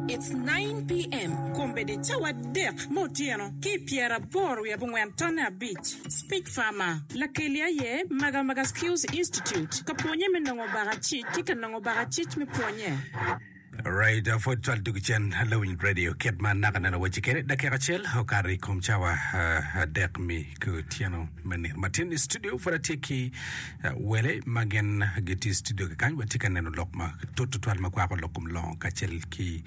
It's nine PM, kombeddi cawa adek me otyeno ki i pyera aboro wiye abongwen tonne abic. Speech Farmer. Lakeli aye Maga Maga Skills Institute ka pwonye me nongo baka cic ki ka nongo baka cic me pwonye. Alright, pwod cwal dog cen lawiny radio kit ma naka nene wacci kede dakika acel okato i kom cawa adek mi ki otyeno me nino matin i studio pwod atye ki Wele ma gin gitye i studio kekany watye ka neno lok ma tut tutwal ma kwako lok kom longo kacel ki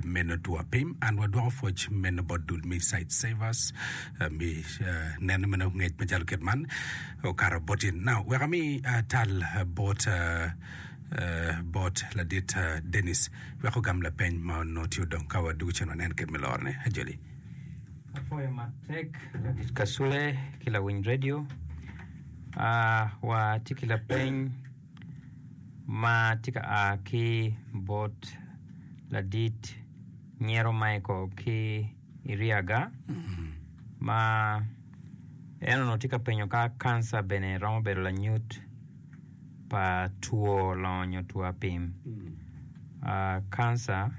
meno two apim. An wadwoko pwoc meno bot dul me Sight Savers me neno meno ngec macalo kit man okato bot in. Now, wek ami tal bot bot ladit Dennis wek ogam lapeny ma onongo tye odong ka wadwogo cen wanen kit me lorone. Ajoli. Apwoyo matek ladit Kasule ki lawiny radio. Watye ki lapeny ma tye ka a ki bot ladit nyero Michael ki i Ryaga ma en onongo tye ka penyo ka kanca bene romo bedo lanyut pa two longo nyo two apim kanca.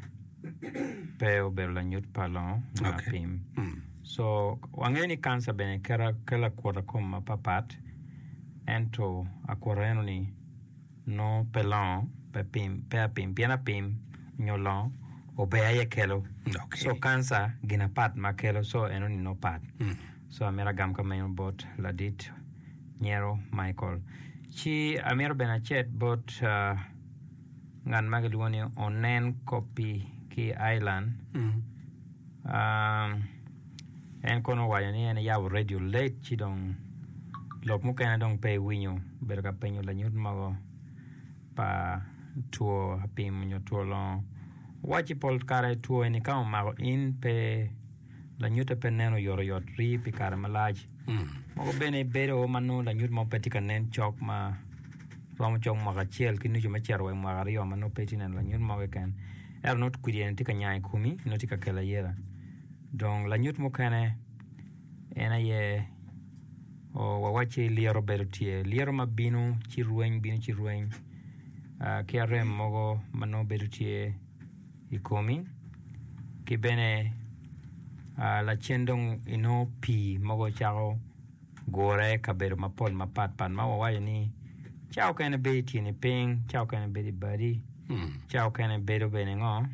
pe obedo lanyut pa longo me apim. So wangeyo ni kanca bene kelo akuta i kom mapatpat ento akuta eno ni nongo pe longo pe pim pe apim pien apim nyo longo obe aye kelo so kanca gin apat ma kelo so eno ni nongo pat so amito agam ka meno bot ladit nyero Michael ci amito bene acet bot ngat ma kilwongo ni onen kopi ki i Ireland en kono owaco ni en eyabo redio late ci dong lok mukene dong pe ewinyo obedo ka penyo lanyut mogo pa two apim nyo two longo owacci pol kare two eni ka omako in pe lanyutte pe nen oyotoyot rii pi kare malac. Mogo bene bedo ma nongo lanyut mo pe tye ka nen cok ma romo cok mwaka acel ki nucu me cito wa i mwaka aryo ma nongo pe itye neno lanyut mo keken. Ento nongo kwidi eni tye ka nyang i komi, nongo tye ka kelo ayeta. Dong lanyut mukene en aye oh, wawacci lyeto bedo tye. Lyeto ma bino ci rweny, bino ci rweny ah, ki arem mogo ma nongo bedo tye. i komi ki bene lacen dong inongo pii mogo cako gure i kabedo mapol mapat pat ma wawaco ni cawa mukene bedo i tyeni piny cawa mukene bedo i badi cawa mukene bedo bene ngo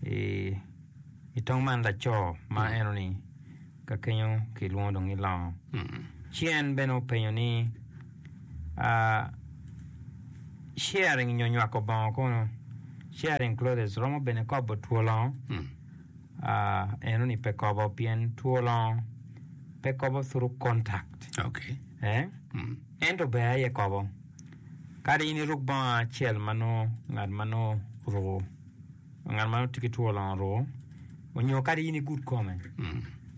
i tong man laco ma enoni Ka kenyo kilwongo dong ni longo. Ci en bene openyo ni, Ah, sharing nyo nywako bongo kono, sharing clothes, romo bene kobo two longo? Ah, eno ni pe kobo pien two longo pe kobo through contact. Okay. Eh? Ento ber aye kobo. Kadi in iruk bongo acel ma nongo ngat ma nongo oruko. Ngat ma tye ki two longo ruu onyo kadi in igud kome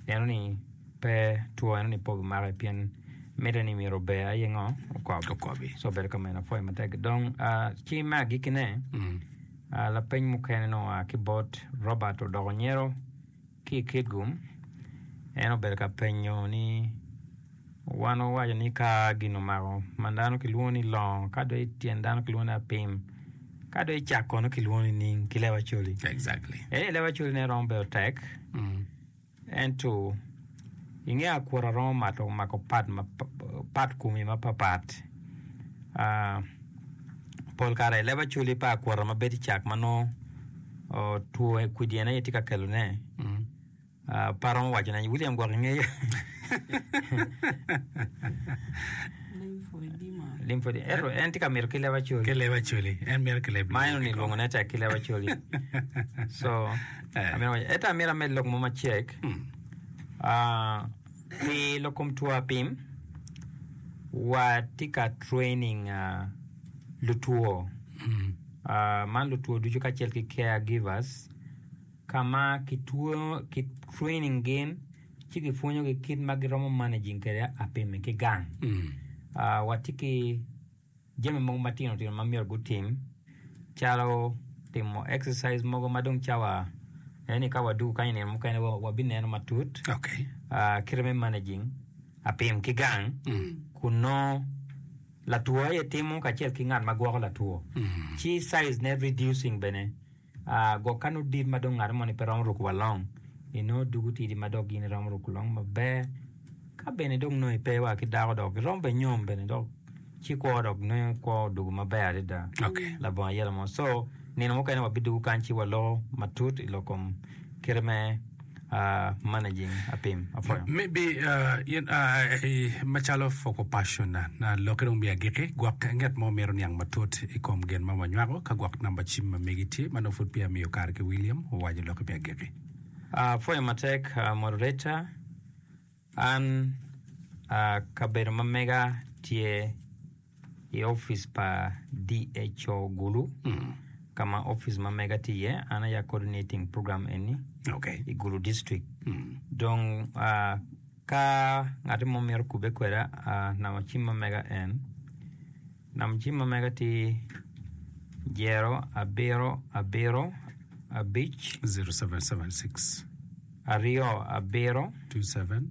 ineno ni pe two enoni pe obimaki pien mitte ni myero ober aye ngo okob Okobi. so bedo ka meno pwoyo matek gidong ah, ci me agikine ah, lapeny mukene nongo oa ki bot Robert odoko nyero Ki i Kitgum, en obedo ka penyo ni, Wan wuwaco ni ka gin omako ma dano kilwongo ni longo, ka dong i tyen dano kilwongo ni apim, ka dong i cak kono kilwongo ni ning ki lewa coli. Exactly. Ee, lewa coli ne romo bedo tek, ento inge akura romo mato mako pat ma pat kumi mapapat. Pol kare i leb Acholi pa akwota ma bedo i cak ma nongo two kwidyen aye tye ka kelone. Pe aromo wacone. William gwok ingeya. Limfodi. Ento en tye ka mito ki leb Acholi. Ki leb Acholi. En mito ki leb Ma en Limfodi. onilwongo ne tek ki leb Acholi. So, Eh. amito waco- ento amito amed lok mo macek. Ah, Pi lokom two apim, watye ka training lutwo man lutwo ducu kacel ki care givers ka ma ki training gin ci ki pwonyogi kit ma giromo managing kwede apim-mi ki gang. Watye ki Jami mogo matino tino ma myero gutim calo timo exercise mogo ma dong cawa aye ni ka wadwogo kany i nino mukene wabineno matut. Okay. Ah, kite me managing apim ki gang kun nongo latwo aye timo kacel ki ngat ma gwoko latwo. Ci size ne reducing bene. Gwok ka nongo dit ma dong ngat moni pe romo ruko wa long, inongo dug otidi ma dok gin iromo ruko long maber. Ka bene dong nongo ipe wa ki dako dok iromo bene nyom bene dok ci kwo dok nongo kwo odugo maber adada. Okay. Labongo ayela mo. So nino mukene wabidugo kany ci waloko matut i lok kom kite me uh, managing a pim apwoyo maybe uh, you know, uh, eh, macalo foco passion na na lokke dong biya giki gwok ngat mo mito niang matut i kom gen ma wanywako ka gwok namba cim ma megi tye ma nongo pud peya miyo kare ki William owaco lokke biya giki uh, pwoyo matek uh, moderator An a kabedo ma mega tye i opic pa DHO Gulu ka ma opic ma mega tye iye. An aya coordinating program eni Okay. i Gulu district. Dong a ka ngat mo mito kubbe kweda a namba cim ma mega en Nam cim ma mega tye zero abiro abiro abic zero seven seven six aryo abiro two seven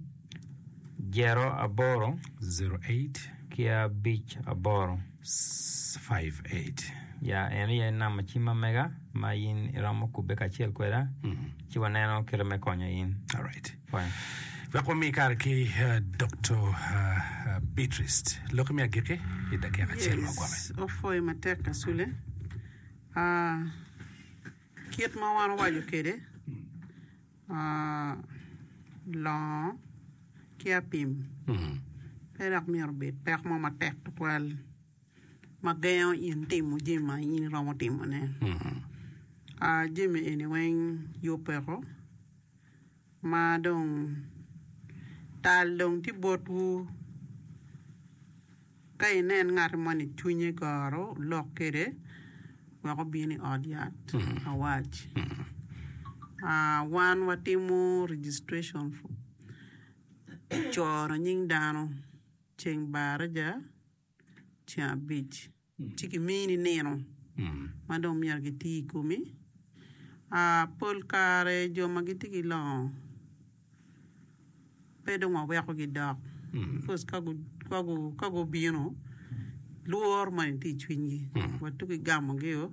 zero aboro zero eight ki abic aboro five eight. Ya en aye nam ma cim ma mega ma in iromo kubbe kacel kweda ci waneno kite me konyo in. Alright. Wek wami kare ki Doktor Beatrice, loki me agikki i dakika acel ma ogwok. Yes, opwoyo matek Kasule. Ah, kit ma wan owaco kwede, ah, longo ki apim pe dok myero obed pek mo matek tutwal ma gengo in timo jami ma in iromo timone. Ah, jami eni weng yub peko. ma dong tal dong tye botwu, ka inen ngat mo ni cwinye goro, wulok kwede wek obin i ot yat awac. Wan watimo registration coro nying dano ceng baraja. ceng abic ci kimini nino ma dong myero giti i komi. Pol kare jo ma gitye ki longo pe dong wawekogi dok bikos ka gubino lworo moni tye i cwinygi wa tuki gamogio.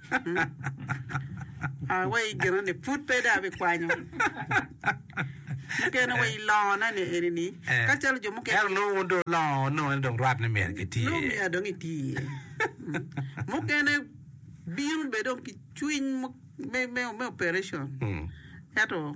Aa wa i ginoni, pud pe dong abikwanyo mukene wa i longona ni eni-ni, ka calo jo mukene. Ento nongo wun dong longo onongo en dong rwat ni myero giti Nongo iye. myero dong iti iye. Mukene bino be dong ki cwiny mu- me, me, me operation. Mm. Ento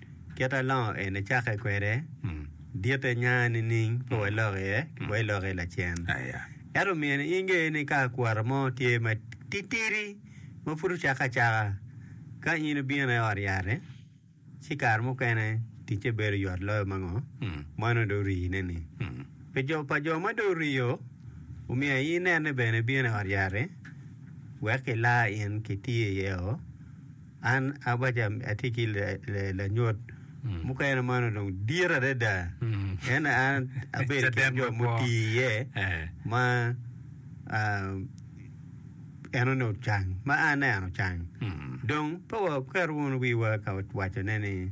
Kit ma longo eni cakke kwede, ditte nya nining pe walok iye wa ilok iye lacen? Ento omiyo inge ni ka akwara mo tye matitidi ma pud ocakke acaka, ka in ibino i ot yat-ti, ci kare mukene ticce bedo yot loyo ma ngo? ma nongo dong orine-ni. Pi jo pa jo ma dong orio, omiyo aye inene bene ibino i ot yat-ti wek kila in kitiyo iye-o. An abaca atye ki lanyut mm. mukene ma nongo dong dit adada mm. en an abedo ki jo mutii iye eh. ma uh, en onongo cang ma aneno cang mm. dong pe waketo wunu wiwa ka wacone ni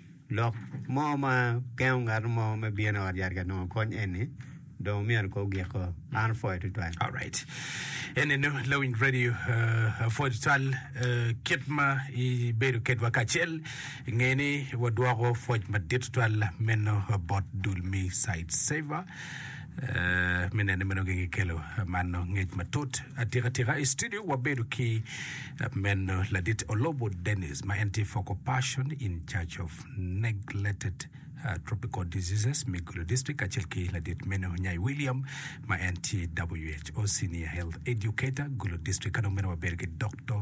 Lok mo ma gengo ngat mo me bino i ot yat ka nongo kony eni dong omyero ko ogiko an opwoyo tutwal. Alright. Ene no Lowing Radio uh, apwoyo tutwal uh, kit ma ibedo kedwa kacel inge ni wadwoko pwoc madit tutwal meno bot dul me Side Saver. me nene ma nongo gin kelo mano ngec matut atika tika i studio wabedo ki meno ladit olobo dennis ma en tye focal person in charge of neglected uh, tropical diseases me gulu district kacel ki ladit meno nyai william ma en tye who senior health educator gulu district kadong meno wabedo ki dr